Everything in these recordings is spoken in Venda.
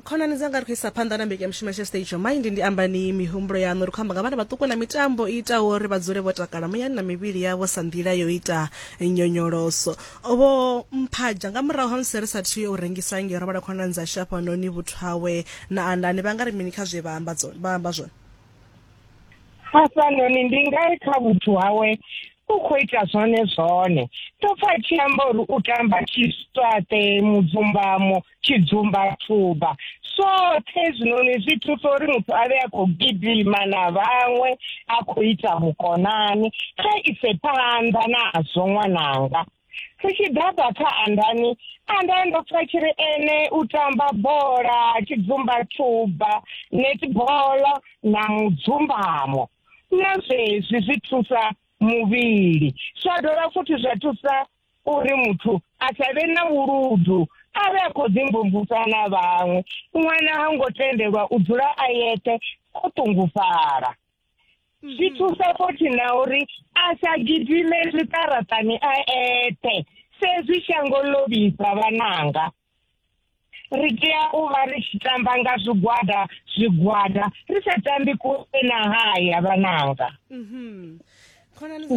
khonani dzanga ri khou isa phanḓa na mbekanyamushumo tsha stage of mind ndi ambani mihumbulo yaṋu ri khou amba nga vhana vhaṱuku na mitambo i itaho uri vha dzule vho takala muyani na mivhili yavho sa nḓila yo ita nyonyoloso vho mphadzha nga murahu ha musi ri sa thiyo u rengisa nge ro vhala khonani dza shafhanoni vhuthu hawe na andani vha nga ri mini kha zwe vha amba zwone hafhanoni ndi ngari kha vhuthu hawe u khou ita zwone zwone ndo pfa tshi amba uri u tamba tshiswaṱe mudzumbamo tshidzumbathuba zwoṱhe zwinoni zwi thusa uri muthu a vhe a khou gidima na vhaṅwe a khou ita vhukonani kha ise phanḓa nazwo ṅwananga ri tshi ḓaḓa kha andani andani ndo pfa tshi ri ene u tamba bola tshidzumbathuba netball na mudzumbamo na zwezwi zwi thusa muvhili zwa dovha futhi zwa thusa uri muthu a sa vhe na vhuludu a vhe a khou ḓimvumvusa na vhaṅwe ṅwana ha ngo tendelwa u dzula a yeṱhe o ṱungufhala zwi mhm. thusa futhi na uri a sa gidime zwiṱaraṱani a eṱhe sezwi shango ḽo vhifha vhananga ri tea u vha ri tshi tamba nga zwigwada zwigwada ri sa tambi kule na haya vhananga mhm. khonani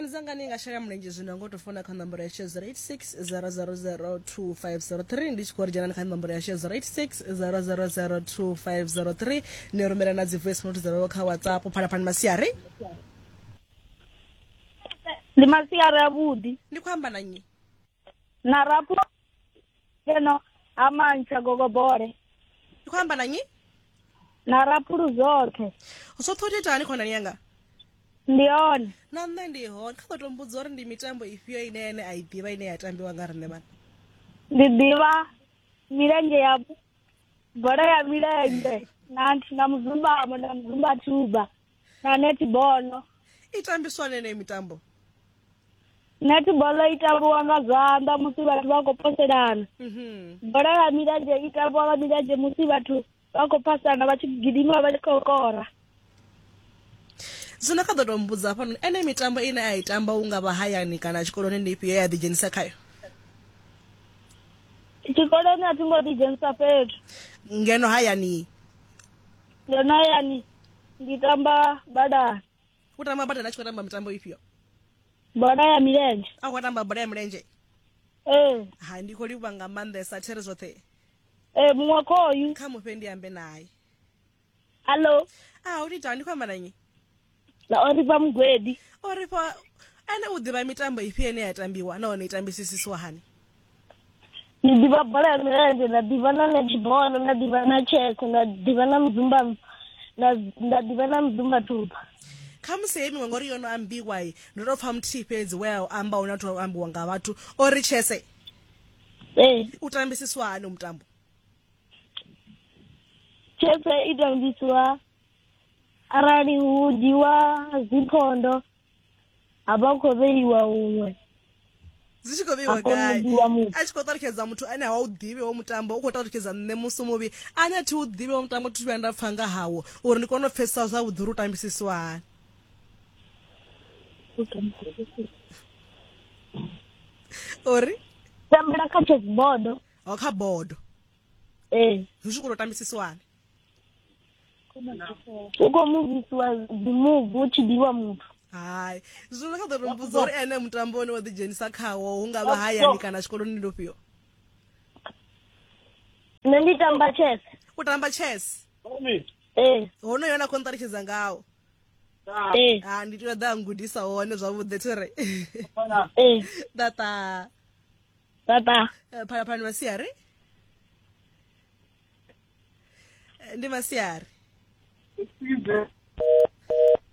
dzanga ni nga shela mulenzhe zwino ngo to fona kha nomboro ya shezero 860002503 ndi tshi khou ri dzhenani kha nomboro ya shezero 860002503 ni rumela na dzi voice note dzavho kha whatsapp phalaphalani masiari ndi masiari avhuḓi ndi khou amba na nyi na rapu keno ha mantsha gogobole ndi khou amba na nyi na rapulu zwoṱhe zwoṱhe u titani khonani yanga ndi yone na nṋe ndi hone kha ḓo to mbudza uri ndi mitambo ifhio ine ene a i ḓivha ine ya tambiwa nga riṋe vhana ndi ḓivha milenzhe ya bola ya milenzhe na na muzumbamo na muzumba thuba na netibolo i tambiswa hani yeneyi mitambo netibolo i tambiwa nga zwanḓa musi vhathu vha khou poselana mhm. bola ya milenzhe i tambiwa nga milenzhe musi vhathu vha khou phasana vha tshi gidima vha tshi khou kora zwino kha ḓo tou mbudza hafhanoni ene mitambo ine a i tamba u nga vha hayani kana tshikoloni ndi ifhio ye a ḓidzhenisa khayo tshikoloni a thi ngo ḓidzhenisa fhethu ngeno hayani Ndo no ya ni ndi tamba badani. U tamba badani a tshi khou tamba mitambo ifhio? Bola ya milenzhe. A khou tamba bola ya milenzhe? Ee. Eh. Ha ndi khou livha nga maanḓesa there zwoṱhe. Ee eh, muṅwe khoyu. Kha mufhe ndi ambe naye. Hallo. Ah, u ita ndi khou amba na nnyi? na o rifha mugwedi o ri fha ene u ḓivha mitambo ifhio ine ya tambiwa nahone i tambisisiswa hani ndi ḓivha bola ya milenzhe nda ḓivha na netball nda ḓivha na chess nda ḓivha na muzumba na nda ḓivha na muzumba thupha khamusi heyi miṅwe ngori yo no ambiwa i ndo tou pfa muthihi fhedzi we a u amba hune a thu ambiwa nga vhathu o ri chese ee u tambisiswa hani mutambo chese i tambisiwa arali hu dzhiwa dziphondo ha vha khou vheiwa huṅwe dzi tshi khou vheiwa gai a tshi khou ṱalutshedza muthu ane a wa u ḓivhi wo mutambo u khou ṱalutshedza nṋe musi muvhi ane a thi u ḓivhi wo mutambo thi vhuya nda pfha nga hawo uri ndi kone u pfesesa zwavhuḓi uri u tambisiswa hani uri tambela kha chess bodo o kha bodo ee zwi tshi khou tou tambisiswa hani u khou muvhisiwa dzimuvi hu tshi ḓiwa muthu hai zwino kha ḓo ri mbudza uri ene mutambo une wa ḓidzhenisa khawo hu nga vha hayani kana tshikoloni ndi ufhio nṋe ndi tamba chess u tamba chess ee honoyo na khou nṱalutshedza ngawo ee ha ndi tea ḓa ngudisa hone zwavhuḓi thi re ee tata tata phalaphalani masiari ndi masiari Usize.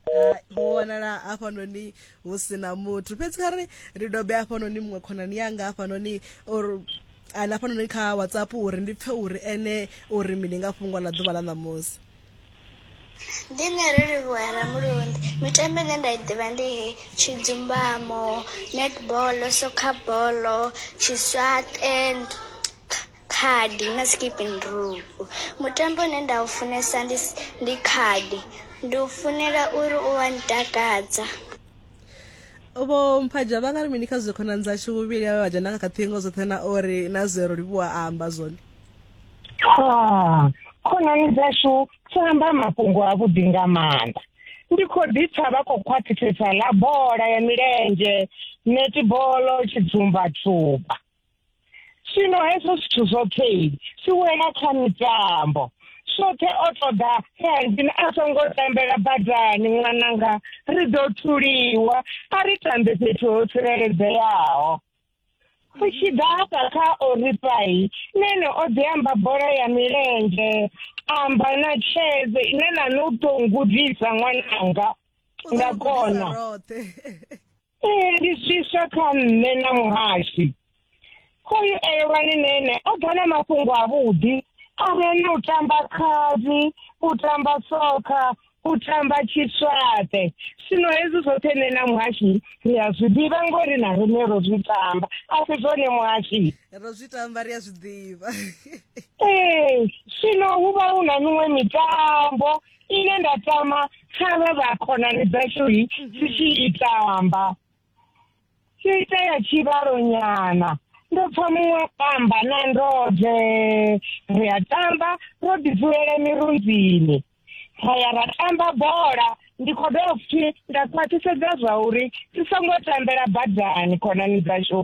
Hai, ho wanala hafhanoni hu sina muthu fhedzi kha ri ri dobe hafhanoni muṅwe khonani yanga hafhanoni or ana hafhanoni kha whatsapp uri ndi pfe uri ene uri mini nga fhungo ḽa ḓuvha ḽa ṋamusi ndi nṋe ri livhuwa ramulundi mitambo ine nda i ḓivha ndi he tshidzumbamo netball soccer ball tshiswaṱe Khadi na skipping rope mutambo une nda u funesa ndi ndi khadi ndi u funela uri u wa ntakadza. Vho Mphaja vha nga ri mini kha zwe khonani dzashu vhuvhili avhe vha dzhena kha ṱhingo dzoṱhe na uri na zwe Rolivhuwa a amba zwone? Khonani dzashu dzo amba mafhungo avhuḓi nga maanḓa. Ndi khou ḓi pfa vha khou khwaṱhisedza ḽa bola ya milenzhe, netibolo, tshidzumba-dzumba. zwino hezwo zwithu zwoṱhe si wela kha mitambo soṱhe o ṱoḓa hezwi a songo tambela badani ṅwananga ri ḓo thuliwa a ri tambe fhethu ho tsireledzeaho ri tshi ḓa hafha kha oripai nene o ḓi amba bola ya milenzhe amba na tsheze ine na no tou ngudisa ṅwananga nda kona Ee, ndi swiswa kha nṋe na muhashi hoyu elwani nene o ḓa na mafhungo avhuḓi a re na u tamba khadi u tamba sokha u tamba tshiswaṱe zwino hezwi zwoṱhe nṋe na muhashi ri a zwi ḓivha ngori na riṋe ro zwi tamba a si zwone muhashi ro zwi tamba ri a zwi ḓivha ee zwino hu vha hu na miṅwe mitambo ine nda tama kha vha vha khonani dzashu hi si tshi itamba tshi itea tshivhalonyana ndo pfa muṅwe amba na ndode ri a tamba ro ḓidzulele mirunzini ra ya ra tamba bola ndi khou dovha futhi nda khwaṱhisedza zwa uri ri songo tambela badani khonani dzashu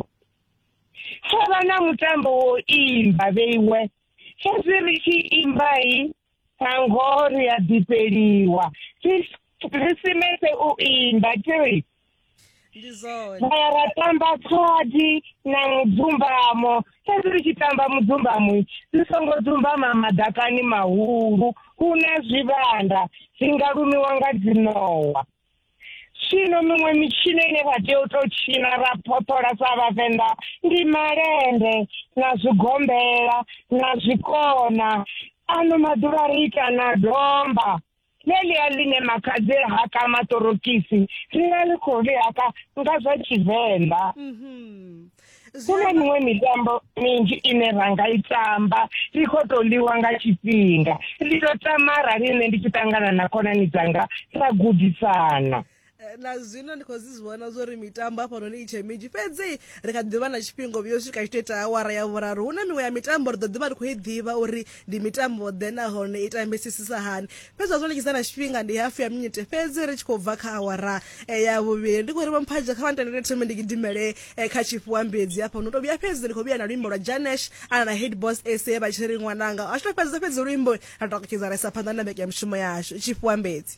tsho vha na mutambo wo imba vheiwe fhedzi ri tshi imbai Thango ri a ḓifheliwa khrisimese u imba tiri ndi zwone vhaya ra tamba khadi na mudzumbamo fhedzi ri tshi tamba mudzumbamo ri songo dzumbama madakani mahulu hu na zwivhanda zwi nga lumiwa nga dzinowa zwino miṅwe mitshino ine vha tea u tou tshina ra phoṱhola sa vhavenḓa ndi malende na zwigombela na zwikona ano maḓuvha ri ita na domba ḽeḽia ḽine makhadzi ha ka maṱorokisi ri vha ri khou ḽihaka nga zwa tshivenḓa mhm. kune miṅwe mitambo minzhi ine ra nga i tamba i khou tou ḽiwa nga tshifhinga ndi tou tama arali nṋe ndi tshi ṱangana na khonani dzanga ra gudisana eh, na zwino ndi khou zwi zwi vhona zwo ri mitambo hafhanoni i tshe minzhi fhedzi ri kha ḓivha na tshifhinga vhuyo swika tshito ita awara ya vhuraru hu na miṅwe ya mitambo ri ḓo ḓivha ri khou i ḓivha uri ndi mitambo ḓe nahone i tambisisisa hani fhedzi zwa zwalekisa na tshifhinga ndi hafu ya minite fhedzi ri tshi khou bva kha awara eh, ya vhuvhili ndi khou ri vhamphadzha kha vhantendele thome ndi gidimele eh, kha tshifhiwa mbedzi hafha no to vhuya fhedzi ndi khou vhuya na luimbo lwa janesh ana na head boss sa vha tshi ri ṅwananga a tshi to fhedza fhedzi luimbo ra takutshedza ra isa phanḓa na vheke ya mushumo yashu tshifhiwa mbedzi